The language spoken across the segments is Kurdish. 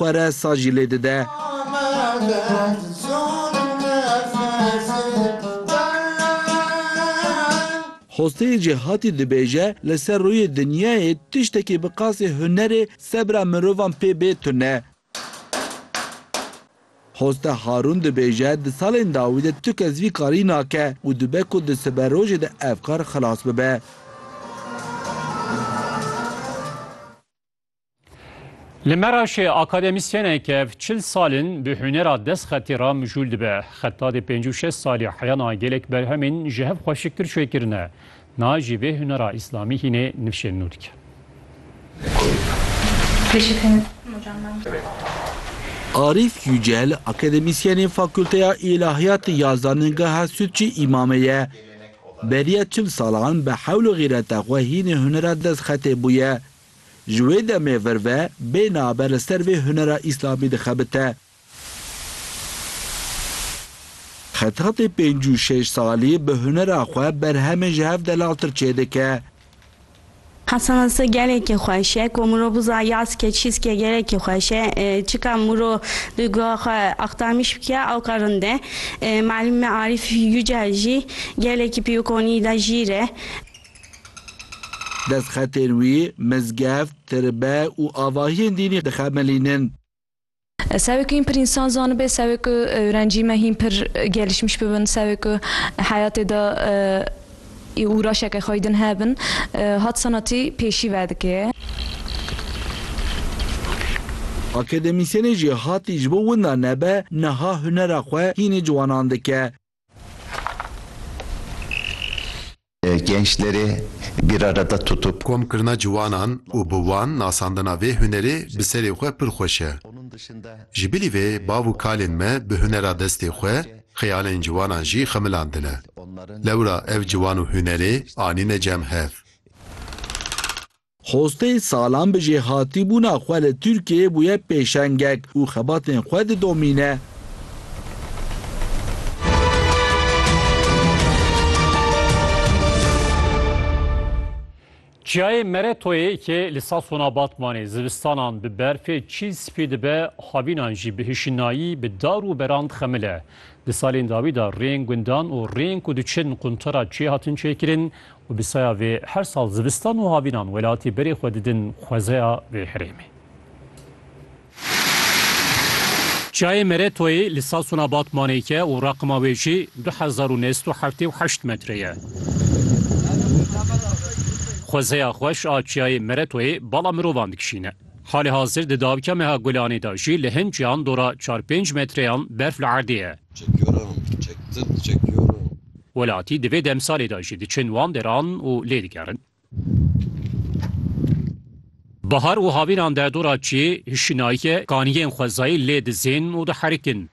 xwe re sajî lê dide. Xosteyê Cêhatî dibêje, Li ser rûyê dinyayê tiştekî bi qasî hunerê sebra mirovan pê bê tune. Xoste Harûn dibêje, Di salên dawî de tu kes vî karî nake û dibe ku di siberojê de ev kar xilas bibe. Li Meraşê akademîsyeneke ev çil salin bi hunera destxetî re mijûl dibe. Xeta di pêncî û şeş salî heyana gelek berhemên ji hev xweşiktir çê kirine. Na jî vê hunera îslamî hînê nifşên nû dike. Arîf Yücel akademîsyenê Fakulteya Îlahiyatê ya Zanîngeha Sûtçî Îmamê ye. Beriya çil salan bi hewl û xîreta xwe hînê hunera destxetê bûye. Ji wê demê vir ve bê nabe li ser vê hunera Îslamî dixebite. Xetatê pênc û şêş salî bi hunera xwe berhemên ji hev delaltir çêdike. Hesanse gelekî xweş e ku mirov biza yaske çîske gelekî xweş e. Çika miro di guha xwe axtarmîş bike awka rind e. Malime Arîf Yucel jî gelekî pî û konî de jîr e. Destxetên wî mizgeft, tirbe û avahiyên dînî dixemelînin. Sewê ku hîn pir însan zanibe, sewê ku ewrencî me hîn pir gelişmiş bibin, sewê ku heyatê de îûraşeke xwe din hebin, hat senatî pêşî vedike. Akademîsyenê jî hatî ji bo winda nebe, niha hunera xwe hînî ciwanan dike. Gençleri bir arada tutup. Komkirina ciwanan û bi wan nasandina vê hunerê bi serê xwe pir xweş e. Ji bilî vê bav û kalên me bi hunera destê xwe xeyalên ciwanan jî xemilandine. Lewra ev ciwan û hunerê anîne cem hev. Xostê salan bi jêhatîbûna xwe li Tirkiyeyê bûye pêşengek û xebatên xwe didomîne. Çiyayê Meretoyê ke li Sasona Batmanê zivistanan bi berfê çîl spî dibe, havînan jî bi hişinayî bi dar û beran dixemile. Di salên dawî de rêyên gundan û rêyên ku diçin quntara çiyê hatin çêkirin Û bi saya vê her sal zivistan û havînan welatî berê xwe didin xwezeya vê herêmê. Çiyayê Meretoyê li Sasûna Batmanê ye û raqima wê jî du hezar û nê sed û heftê û heşt metre ye. Xwezeya xweş a çiyayê Meretoyê bala mirovan dikişîne. Halê hazir di dawîka meha Gulanê de jî li hin çiyan dora çar pênc metreyan berf li erdê ye. Çekiyorum, çektim, çekiyorum. Welatî di vê demsalê de jî diçin wan deran û lê digerin. Bahar û havînan de dora çiyê hişinayî kaniyên xwezayî lê dizên û diherikin.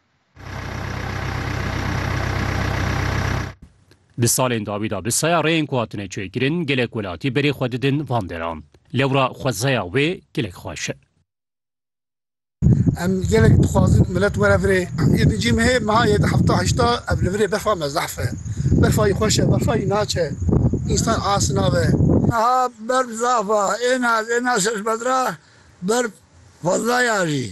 Di salên dawî de bi saya rêyên ku hatine çêkirin gelek welatî berê xwe didin van deran. Lewra xwezaya wê gelek xweş e. Em gelek dixwazin milet were virê. Yê di cîm hê meha yê di hefta heşta ev li virê berfa me zehf e. Berfa yî xweş e, berfa yî naçe. Însan asî nabe. Meha berf zaf a. Êna ez êna şeş metra berf fazla ye ajî.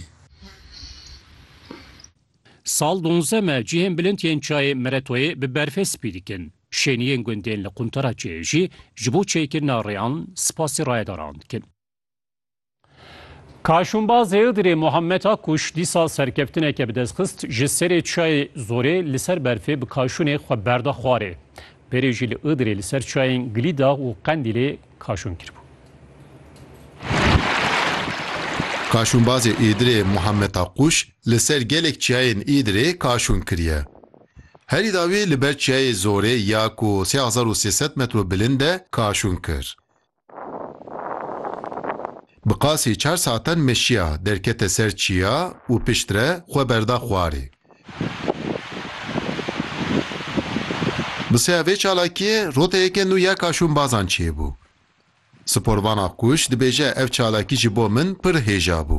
Sal donze me cihên bilind yên çayê Meretoyê bi berfê spî dikin. Şêniyên gundên li quntara çêyê jî ji bo çêkirina rêyan spasî rayedaran dikin. Kaşûnbaz Hêdirê Muhammed Akkuş dîsa serkeftineke bi dest xist ji serê çayê Zorê li ser berfê bi kaşûnê xwe berda xwarê. Berê jî li Îdirê li ser çayên Gilîda û Qendîlê kaşûn kiribû. Kaşûnbazê Îdirê Muhammed Akkuş li ser gelek çiyayên Îdirê kaşûn kiriye. Herî dawî li ber çiyayê Zorê ya ku sê hezar û sê sed metro bilind e kaşûn kir. Bi qasî çar saetan meşiya, derkete ser çiya û piştre xwe berda xwarê. Bi seya vê çalakiyê roteyeke nû ya kaşûnbazan çêbû. Sporvana Kûş dibêje ev çalakî ji bo min pir hêja bû.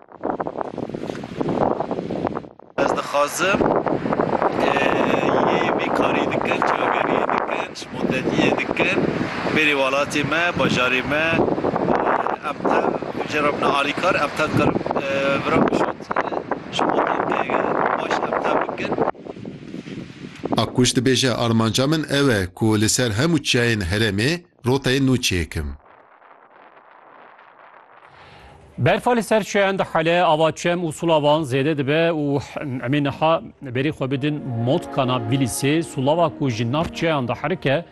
Ez dixwazim yê vê karî dikin, çaveriyê dikin, ji moteliyê dikin bêrî welatê me, bajarê me. Em tev ji re bine alîkar, em tev karin vira ku şût ji motel te baş em tev bikin. Akkuş dibêje, Armanca min ew e ku li ser hemû çiyayên herêmê, Roteyê nû çêkim. Berfa li ser çiyan dihele, ava çem û sula wan zêde dibe û emê niha berî xwe bidin motkana Bîlîsê. Sulava ku ji nav çiyan diherike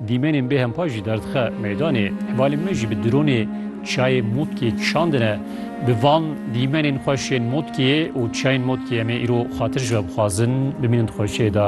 dîmenên bê hempa jî derdixe meydanê. Hevalên me jî bi dronê çiyayê motkiyê kişandine. Bi van dîmenên xweş ên motkiyê û çiyayên motkiyê em ê îro xatir ji we bixwazin bimînin di xweşiyê de.